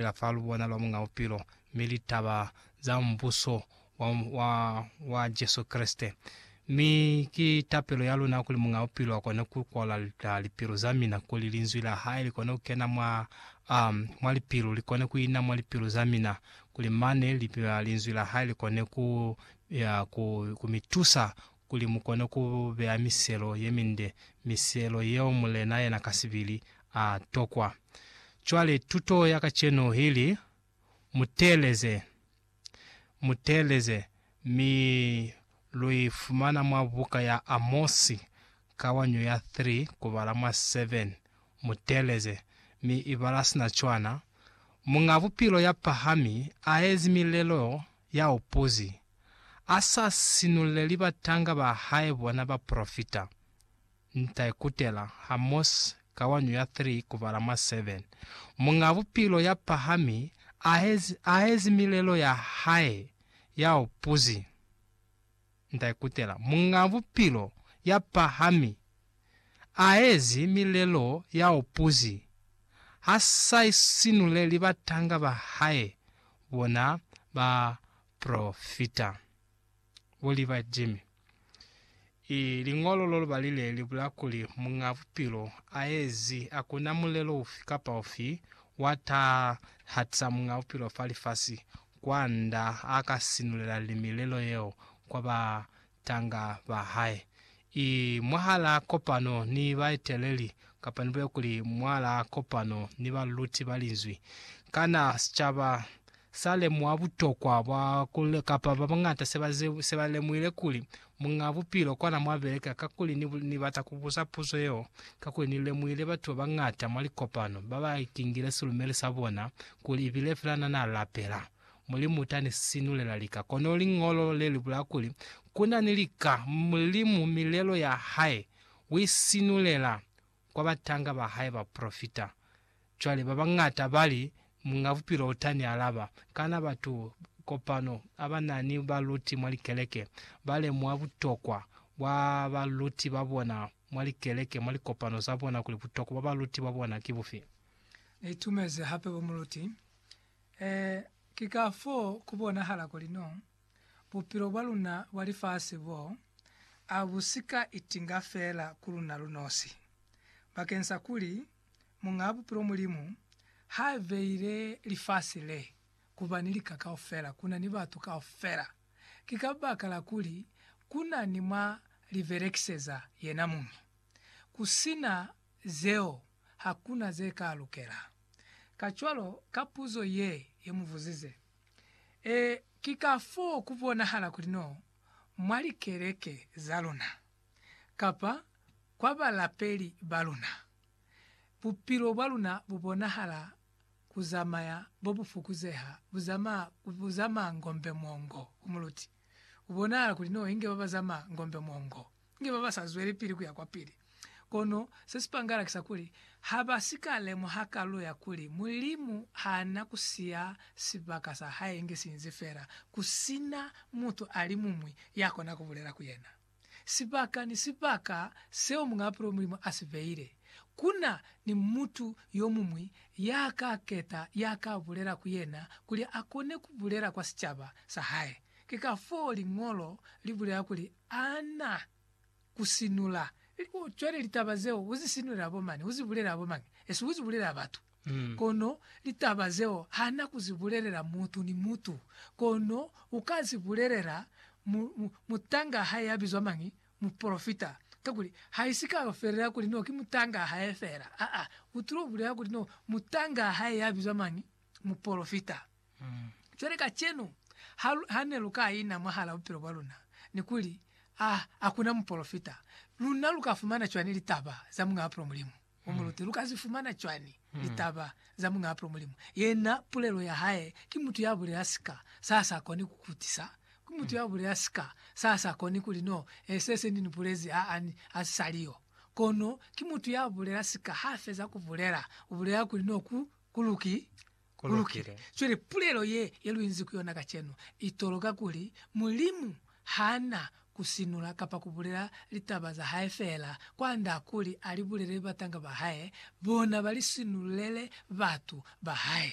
fela fa lubona lwa Muñ'a Bupilo, mi litaba za Mubuso wa, wa, wa Jesu Kreste. Mi ki tapelo ya luna kuli Muñ'a Bupilo akone ku kola lipilu za mina, kuli Linzwi la Hae likone ku kena mwa, um, mwa lipilu, likone ku ina mwa lipilu za mina, kuli mane li, Linzwi la Hae likone ku, ya, ku, ku mi tusa kuli mu kone ku beya miselo ye minde, miselo yeo Mulena yena kasibili a tokwa. Cwale tuto ya kacenu ili, Mu teeleze. Mu teeleze. Mi lu i fumana mwa buka ya Amosi, kawanyo ya 3, kubala mwa 7. Mu teeleze. Mi i bala sina cwana, Muñ'a Bupilo ya pahami a ezi milelo ya upuzi, A sa sinuleli batanga ba hae bona bapolofita. Nta ikutela, ha Mos. Kawanyo ya 3 kubala mwa 7. Muñ'a Bupilo ya pahami a ahezi milelo ya hae ya upuzi. Nta ikutela, Muñ'a Bupilo ya pahami a ahezi milelo ya upuzi. Ha sa isinuleli batanga ba hae bona ba Profita. Bo li ba Jimmy. I liñolo lo lubali le li bula kuli Muñ'a Bupilo a ezi, a ku na mulelo ufi kapa ufi wa taha hatisa Muñ'a Bupilo fa lifasi, kwand'a a ka sinulela li milelo yeo kwa ba batanga ba hae, i mwahal'a kopano ni baeteleli, kapa nibulele kuli, mwal'a kopano ni baluluti ba Linzwi. Kana sicaba sa lemuha butokwa bwa ku, kapa ba bañata se ba, se ba lemuhile kuli Muñ'a Bupilo kwana mwa beleka? Kakuli ni, ni bata ku buza puzo yeo, kakuli ni lemuhile batu ba bañata mwa likopano ba ba ikingile silumeli sa bona kuli i bile fela na n'a lapela. Mulimu uta ni sinulela lika. Kono liñolo le li bula kuli, Ku na ni lika. Mulimu milelo ya hae u i sinulela kwa batanga ba hae bapolofita. Cwale ba bañata ba li, Muñ'a Bupilo uta ni alaba. Kana batu kopano a ba na ni baluti mwa likeleke ba lemuha butokwa bwa baluti ba bona mwa likeleke, mwa likopano za bona, kuli butokwa bwa baluti ba bona ki bufi? Ni itumezi hape bo muluti Ee, ki ka fo ku bonahala kuli no bupilo bwa luna bwa lifasi bo a bu si ka itinga fela ku luna lu nosi. Bakeng sa kuli Muñaa Bupilo Mulimu ha beile lifasi le ku ba ni lika kaufela, ku na ni batu kaufela, ki kabakala kuli ku na ni mwa li belekiseza yena muñi. Ku si na zeo ha ku na ze ka lukela. Kacwalo, ka puzo ye ye mu buzize, ee, ki ka foo ku bonahala kuli no mwa likeleke za luna, kapa kwa balapeli ba luna, bupilo bwa luna bu bonahala ku zamaya bo bu fukuzeha, bu zamaa, bu zamaa ngombe mwongo. Ku muluti, ku bonahala kuli no inge ba ba zamaa ngombe mwongo. Ki ba ba sa zwelepili ku ya kwapili. Kono se si pangala ki sa kuli, ha ba si ka lemuha kalu ya kuli Mulimu ha na ku siya sibaka sa hae inge si inzi fela ku si na mutu a li muñwi ya kona ku bulela ku yena. Sibaka ni sibaka seo Muñ'a Bupilo Mulimu a si beile, ku na ni mutu yo muñwi ya ka keta ya ka bulela ku yena kuli a kone ku bulela kwa sicaba sa hae. Ki kafoo Liñolo li bulela kuli, Ana ku sinula u cwale litaba zeo uzi sinulela bo mani uzi bulela bo mangi esi uzi bulela batu kono litaba zeo hana kuzi bulelela mutu ni mutu kono uka zi bulelela mu, mu, mutanga hae ya bizwa mangi mupolofita kakuli haisi ka yo felela kuli no ki mutanga hae fela aa utulo bulela kuli no mutanga hae ya bizwa mangi mupolofita. Cwale kacenu, ha, ha ne lu ka ina mwahala bupilo bwa luna, ni kuli, A, a kuna mupolofita, luna lu ka fumana cwani litaba za Muñaapulo Mulimu o mu lute? Lu ka zi fumana cwani litaba za Muñaapulo Mulimu? Yena, pulelo ya hae, ki mutu ya bulela sika sa sa koni ku kutisa. Ki mutu ya bulela sika sa sa koni kuli, No, e, se, se ni ni bulezi, a, a, a si sa li yo. Kono ki mutu ya bulela sika ha feza ku bulela, u bulela kuli, No, ku, ku luki, ku lukile. Cwale pulelo ye, ye lu inzi ku yona kacenu, i toloka kuli Mulimu ha na ku sinula kapa ku bulela litaba za hae feela, kwand'a kuli a li bulele batanga ba hae, bona ba li sinululele batu ba hae.